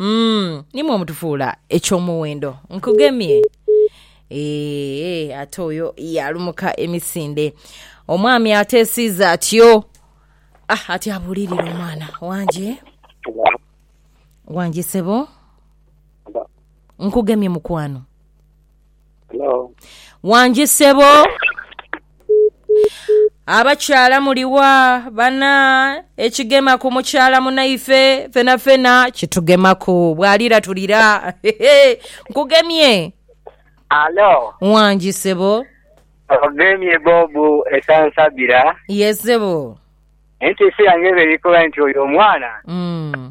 Umm nimwo mutufuula eky'omuwendo. Nkugemye. Eehh ate oyo yaalumuka emisinde. Omwami ateesiiza atyo. Ah ati abuulirire omwana. Wange. Wange ssebo. Nkugemye mukwano. Hello. Wangi ssebo. Abakyala muliwa bana ekigema ku mukyala munaife fena fena kitugemaku bwalira tulira nkugemye Alo, wangi ssebo ogemye Bobu esansabira ye ssebo nti ensi yange ebe eri kuba nti oyo omwana mm.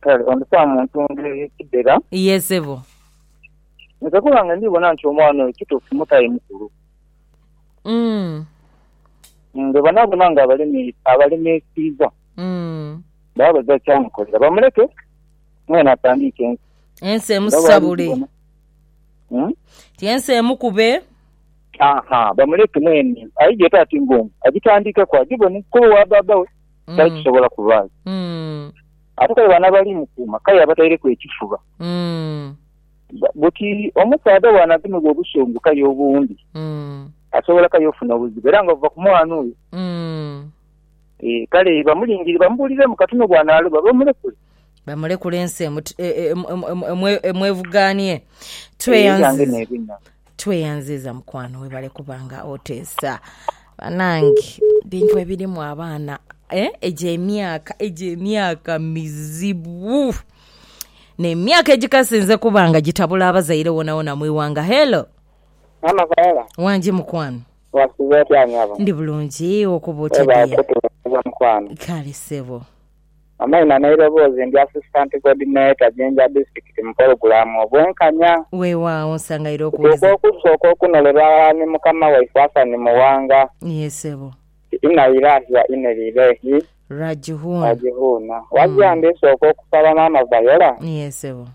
Kale ondhisa mu ntunda ey'e Kidera. Ye sebo. Nze ku lwange ndhi bona nti omwana oyo kituufu mutayi mukulu. Mm. Nga banaabona nga abalemi abalemiisiibwa Mm. baba baidha kyamukolera. Bamuleke mwene atandiike ensi. Ensi Nga bw'ali emusabule. gibona. Mm. Ti ensi emukube. Aha, bamuleke mwene aije ete ati ng'omu, agitandiikeku agibone kuba owa bbaabba we. kyali kisobola kubaayo. Ate kale bano abali mu kuuma k'aye abataireku ekifuba. Buti omusaadha bw'anagemebwa obusungu k'aye obundi, asobola k'aye ofuna obuzibu era nga buva ku mwana oyo. Ee, kale bamulingirire bamubuuliremu kati no bw'anaaloba bamulekule. Bamulekule ensi emwevugaanie. Tweyanziza. Tweyanziiza mukwano webale kuba nga oteesa banange bintu ebirimu abaana eh? egyo emyaka egyo emyaka mizibu nemyaka egikasinze kuba nga gitabula abazaire wonawona mwiwanga hello Maama Viola, wangi mukwano wasiiba otya nyabo? ndi bulungi okuba otya Webale dear kutuweereza mukwano. kale sebo Amaina n'eiroboozi ndi Assistant Coordinator Jinja Disitulikiti mu pologulaamu Obwenkanya. Weewaawo, nsangaire okuwuliriza. Tutuuka okusa okw'okunolerwa aghalala ni mukama waife Hassan Muwanga. Yee, ssebo. Nti, Inna Ilaahi wa Inna Ilaihi. Rajihuun. Rajihuun. Wazira ndisooka okusaba Maama Viola. Yee, ssebo.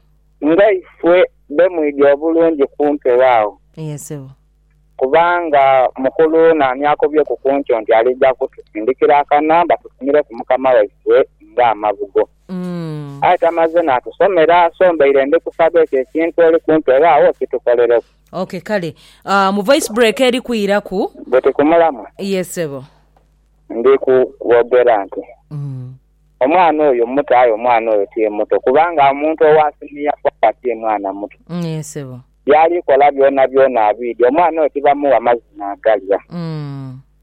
Nga ife bemwidhi obulungi ku mpewo agho. Yee, ssebo. Kubanga mukulu naani akobyeku ku ntyo nti aliija kutusindikira akana batufumireku mukama waifwe ng'amabugo? Aye tamaze n'atusomera, so mbaire ndi kusaba ekyo ekintu oli kumpegha agho okitukolereku. Ok kale. Ah, mu voice break eri kwiraku. Buti ku mulamwa. Yes ssebo. Ndi kubogera nti omwana oyo muto aye omwana oyo ti muto kubanga omuntu owa siniya four ti mwana muto. Yee ssebo. By'ali kola byonabyona abwidi. Omwana oyo tibamuwa mazi naagalya.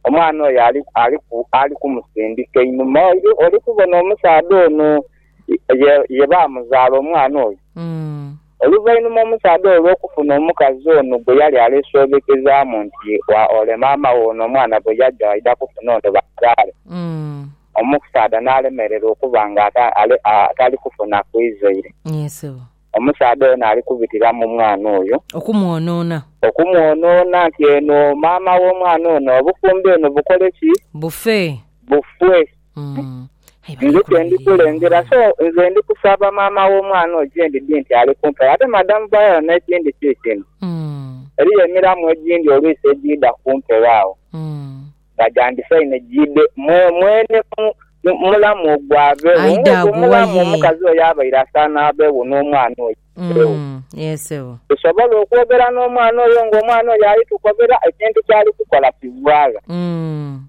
Omwana oyo ali, ali, ali kumusindika einhuma. Oli, oli kubona omusaadha ono, ye, ye baamuzaala omwana oyo. Oluvainhuma omusaadha oyo olw'okufuna omukazi ono gwe yali aleesoobekezaamu nti, Wa, ole maama wo ono omwana bwe yaja waidha kufuna ono bamuzaale, omusaadha n'alemererwa okuba nga ata, ale, a, tali kufuna ku izaire. Omusaadha ono ali kubitira mu mwana oyo. Okumwonoona. Okumwonoona nti eno maama w'omwana ono, obufumbo eno bukole ki? Bufe. Bufe. Nze kye ndi kulengera. So, nze ndi kusaba maama w'omwana oyo gye ndidhi nti ali kumpi awo. Ate Madam Viola n'ekindi kiikino, eriyo emiramwa egindi oluisi egiidha ku mpewo agho. nga gya ndisa inho giidhe mwene mu mulamu ogwo abegho. Aidha Nga ogwo agugha mulamu ye. omukazi oyo abaire asaana abegho n'omwana oyo abegho. Mm, yee sebo. Tusobola okwogera n'omwana oyo nga omwana oyo ali tukobera ekintu kyali kukola kigwagha. Mm.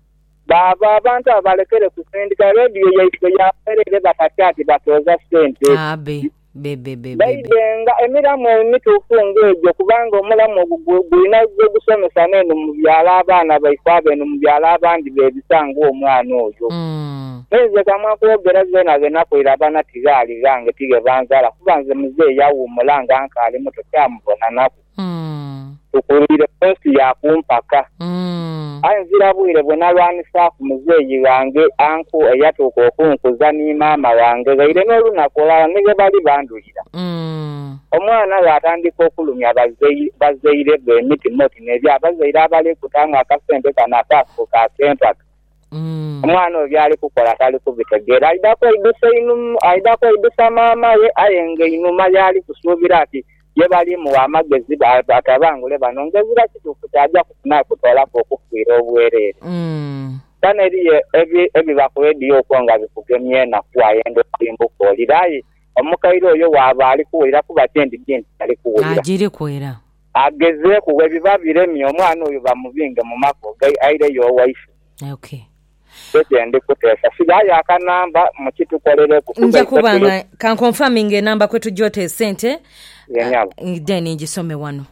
Baaba abantu abo balekere kusindika. Radio yaiswe ya bwerere batatya nti batooza sente. Abe. Bebebebebe. Baidhenga emilamu emituufu ng'egyo kubanga omulamu ogwo gwina gwe gusomesa n'eno mu byalo abaana baife abo eno mu byalo abandi beebisa ng'omwana oyo. Me nze kamwa kwogera zeena dhe nakoira abaana tighaali ghange tighe banzaala kuba nze muzeeyi awuumula nga nkaali muto kyamubonanaku. Tukungiire ku nsi ya ku mpaka. Aye nzira bwire bwe nalwanisaaku muzeeyi ghange anku eyatuuka okunkuza ni maama ghange ghaire n'olunaku olulala ni ghe bali bandhulira. Omwana ghatandika okulumya bazaire be emitima oti n'ebya bazaire abali kuta nga akasente kano akaafuuka ak'empaka. Omwana oyo by'ali kukola tali kubitegeera. Aidha kweidusa maama ghe aye nga einhuma y'ali kusuubira ati Ye bali mugha amagezi atabangule bano ng'ezira kituufu ky'aja kufuna okutoolaku okufiira obwereere. Bano eriyo ebiba ku leediyo okwo nga bikugemya enaku wayenda okulimbuka owulire aye omukaire oyo waaba ali kuwulira kuba kyendidhi nti tali kuwulira. Agezeeku, bwebiba biremye omwana oyo bamubinge mu maka oge aireyo owaiswe. Nze kye ndi kuteesa. Sighayo akanamba muki tukolereku. Nja kuba nga ka nkonfaminge enamba kwe tugya ota esente then ngisome wano.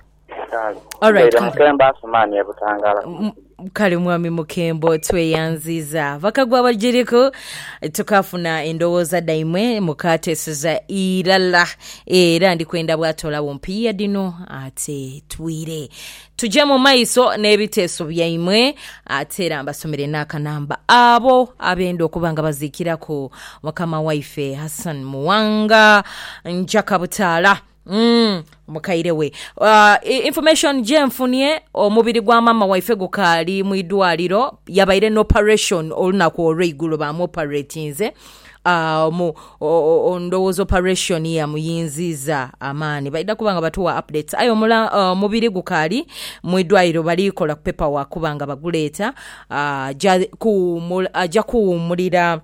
Kale. Mbaire Mukembo Asumani e Butangala. Kale mwami Mukembo tweyanziiza. Bakagwa abagiriku tukaafuna endowooza dhaimwe mukaateeseza irala era ndi kwenda bw'atoolagho mpiiya dhino ate twire. Tuje mu maiso n'ebiteeso byaimwe. Ate era mbasomere n'akanamba abo abenda okuba nga baziikiraku mukama waife Hassan Muwanga Njakabutaala umm mukaire we. Information jenfunye omubiri gwa maama waife gukaali mu idwaliro, yabaire n'operation olunaku olweigulo bamwoperatinze. A omu o ndhowooza operation ya muyinziiza amaani. Baidha kuba nga batuwa updates. Aye omula omubiri gukaali mu idwaaliro bali kola ku paper work kuba nga baguleeta aja kuwuumula aja kuwuumulira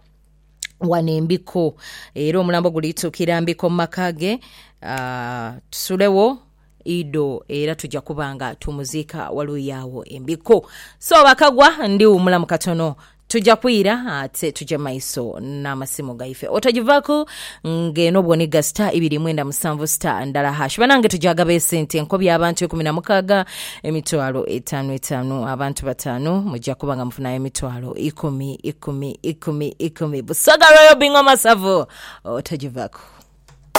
wano e Mbikko era omulambo guli tuukira Mbikko mu maka ge aa tusulewo. idho era tuja kuba nga tumuziika waluyi agho embiko. So bakagwa ndi wumulamu katono tuja kwira ate tuje maiso namasimu gaife otajivaku nga eno bwoniga star ibiri mwenda musanvu star ndala hash banange tujagaba esente enkobi abantu ikumi namukaga emitwalo etanu etanu abantu batanu muja kuba nga mufunayo emitwalo ikumi ikumi ikumi ikumi Busoga Royal Bingoma Savo otajivaku.